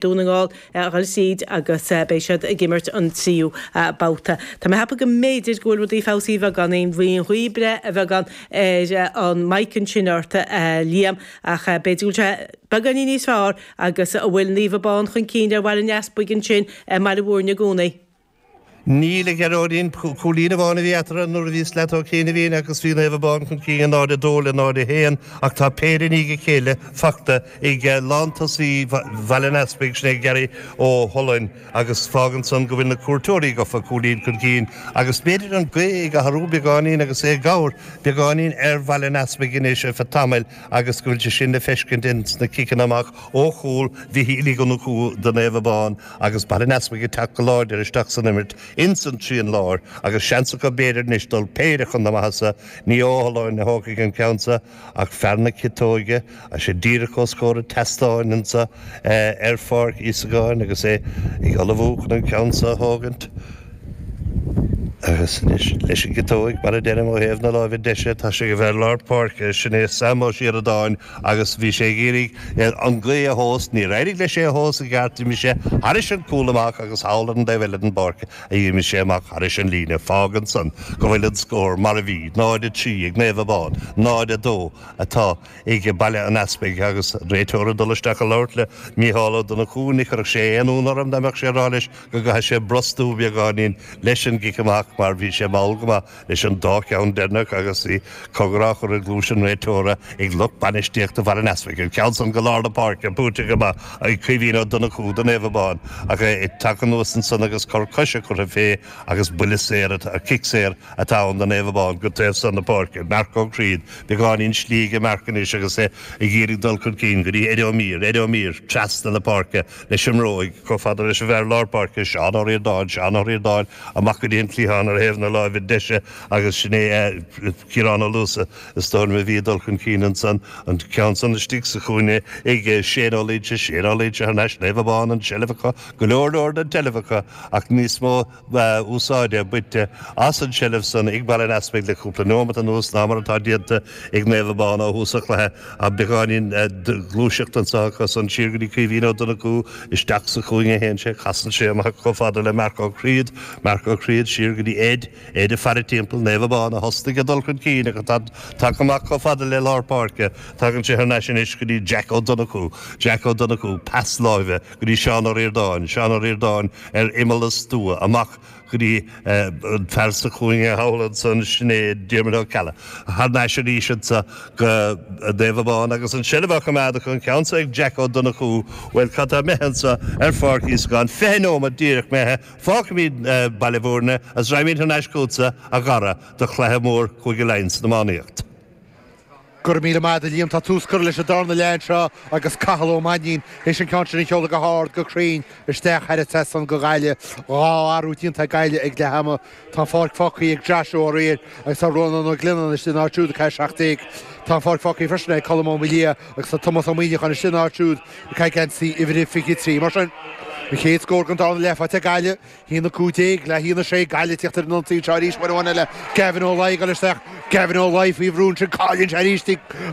Dún na nGall a bhfuil siad agus beidh siad ag imirt an tríú babhta. Tá mé ag ceapadh go mb'fhéidir go bhfuil rudaí ag feabhsú a bheagán, an bhféadfá breith a bheagán ar an mic ansin ort a Liam, ach b'fhéidir go bhfuil sé beagáinín níos fearr agus an bhfuil Naomh Abán chun cinn ar Bhaile an Easpaig ansin i mBaile Mhúirne i gcónaí. Níl a Ghearóidín, cúilín amháin a bhí eatarthu nuair a bhí mé leat tá cúig nóiméad ó shin agus bhí Naomh Abán chun cinn, 0, 2 le 0, 1, ach tá péire i ndiaidh a chéile faighte ag lántosaí Bhaile an Easpaig, sin é Gary Ó hUallacháin, agus fágann san go bhfuil na cuairteoirí gofa cúilín chun cinn agus b'fhéidir an ghaoth ag athrú beagáinín agus é ag cabhrú beagáinín ar Bhaile an Easpaig anois ar feadh tamaill agus go bhfuil sé sin le feiscint ins na ciceanna amach ó chúl Mhichíl Uí Dhonnchú do Naomh Abán. agus Baile an Easpaig ag teacht go láidir isteach san imirt ins an trian láir agus seans acu b'fhéidir anois dul péire chun na maitheasa. Ní hé Ó hUallacháin a thógfaidh an ceann seo ach fear na ciotóige, tá sé díreach os comhair an tseastáin anso ar Pháirc Íosagáin agus é ag ullmhú chun an ceann seo a thógaint. Agus anois leis an gciotóig, mar a deirim, ó thaobh na láimhe deise, tá sé ag an bhfear lár páirce, sin é Sam Ó Síoradáin, Agus bhí sé ag iarraidh an ghaoth a thomhas. Níor éirigh leis é a thomhas i gceart. D'imigh sé thairis an gcúl amach agus thall ar an dtaobh eile den pháirc a d'imigh sé amach thairis an líne. Fágann san go bhfuil an scór mar a bhí, 0, 3 ag Naomh Abán, 0, 2 atá ag Baile an Easpaig agus réiteoir ag dul isteach ag labhairt le Mícheál Ó Donnchú. Ní chuirfeadh sé aon ionadh orm dá mbeadh sé ag rá leis go gcaithfidh sé brostú beagáinín leis an gcic amach mar bhí sé mall go maith. leis an dá cheann deireanach agus b'fhéidir cogar á chur i gcluais an réiteora ag lucht bainistíochta Bhaile an Easpaig. An ceann san go lár na páirce, buaite amach ag Caoimhín Ó Donnchú do Naomh Abán ach é ag teacht anuas ansan agus cor coise curtha fé agus buille saor atá, cic saor atá ann do Naomh Abán go dtí an taobh san na páirce. Marc Ó Críod, beagáinín slí aige Marc anois agus é ag iarraidh dul chun cinn go dtí Éadbhard Ó Mír. Éadbhard Ó Mír, trasna na páirce. leis an mbróig, chomh fada leis an bhfear lár páirce, Seán Ó Ríordáin, Seán Ó Ríordáin, amach go dtí an cliathán ar thaobh na láimhe deise agus sin é Ciarán Ó Luasa is dóigh liom a bhí ag dul chun cinn ansan, an ceann san istigh sa chúinne ag Shane Ó Loingsigh, Shane Ó Loingsigh thar n-ais, Naomh Abán, an tseilbh acu, go leor leor den tseilbh acu ach níos mó. úsáide bainte as an tseilbh san ag Baile an Easpaig le cúpla nóiméad anuas ná mar atá déanta ag Naomh Abán ó thús an chluiche, ach beagáinín gluaiseacht anseo acu san. Siar go dtí Caoimhín Ó Donnchú, isteach sa chúinne a théann sé, casann sé amach chomh fada le Marc Ó Críod, Marc Ó Críod, siar go dtí Ed, Ed ag faire timpeall, Naomh Abán a thosnaigh ag dul chun cinn ach atá tagtha amach chomh fada le lár páirce, tagann sé thar n-ais anois go dtí Jack Ó Donnchú, Jack Ó Donnchú, pas láimhe. go dtí Seán Ó Ríordáin, Seán Ó Ríordáin ar imeall an stua, amach go dtí an fear sa chúinne thall ansan, sin é Diarmaid Ó Ceallaigh. Thar n-ais arís anso go Naomh Abán agus an tseilbh á choimeád acu, an ceann so ag Jack Ó Donnchú. Bhuel, cad tá imithe anso ar Pháirc Íosagáin, fiche neomat díreach imithe, fágfaimid Baile Bhúirne agus raghaimid thar n-ais chughatsa, a Dhara, do chluiche mór Chúige Laighean san iománaíocht. Go raibh míle maith agat, a Liam. Tá tús curtha leis an darna leath anseo agus Cathal Ó Mainnín théis an ceann sin a sheoladh go hard, go cruinn isteach thar an trasnán do Ghaillimh. Dhá athrú déanta ag Gaillimh ag leath ama. Tá an pháirc fágtha ag Joshua Ó Riain agus tá Rónán Ó Glionnáin istigh ina áit siúd ag caitheamh 17. Tá an pháirc fágtha freisin ag Colm Ó Maoildhia agus tá Tomás Ó Muíneacháin istigh ina áit siúd ag caitheamh geansaí uimhir a 23. Mar sin, an chéad scór den darna leath faighte ag Gaillimh. A haon a 15 le haon a 6 Gaillimh ag tíocht ar an ionsaí seo arís uair amháin eile Gavin Ó Laigh ag dul isteach Gavin Ó Laigh faoi bhrú ansin cailleann sé arís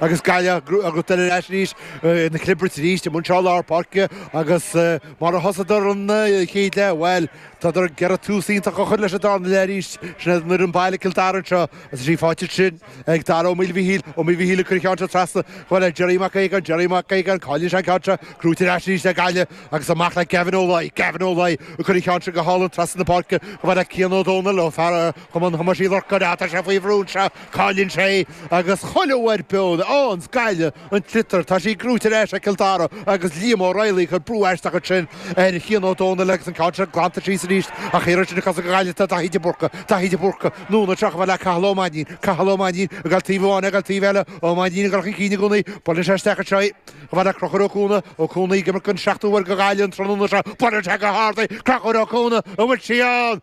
agus Gaillimh gnóthaítear ar ais arís ina clibirt arís anseo i lár páirce agus mar a thosaíodar an chéad leath bhuel tádar ag iarraidh tús iontach a chur leis an darna leath arís sin iad an fhoireann baile Cill Dara anseo agus í faighte ansin ag Dara Ó Maoilmhichíl, Ó Maoilmhichíl ag cur an ceann seo trasna chomh fada le Gerry Mac Aogáin, Gerry Mac Aogáin, cailleann sé an ceann seo, gnóthaítear ar ais arís ag Gaillimh agus amach le Gavin Ó Laoi, Gavin Ó Laoi ag cur an ceann seo go hálainn trasna na páirce chomh fada le Cian Ó Dónaill ó fear Chumann Thomáis Uí Lorcáin, á tá sé faoi bhrú anseo, cailleann sé é agus chuile uair beo a fhaigheanns Gaillimh. An tsliotar, tá sí gnóthaithe ar ais ag Cill Dara agus Liam Ó Raghallaigh ag cur brú aisteach ansin ar Chian Ó Dónaill agus an ceann sin glanta síos arís ach iarrann sin a cosa go gairid do Dhaithí de Búrca, Daithí de Búrca, anonn anseo chomh fada le Cathal Ó Mainnín, Cathal Ó Mainnín, ag dul taobh amháin, ag dul taobh eile, Ó Mainnín ag dul chun cinn i gcónaí, buaileann sé isteach anseo í, chomh fada le Crochúr Ó Cuana, Ó Cuana ag imirt den seachtú uair do Ghaillimh an tráthnóna seo, buaileann sé go hard í, Crochúr Ó Cuana, an bhfuil sí ann?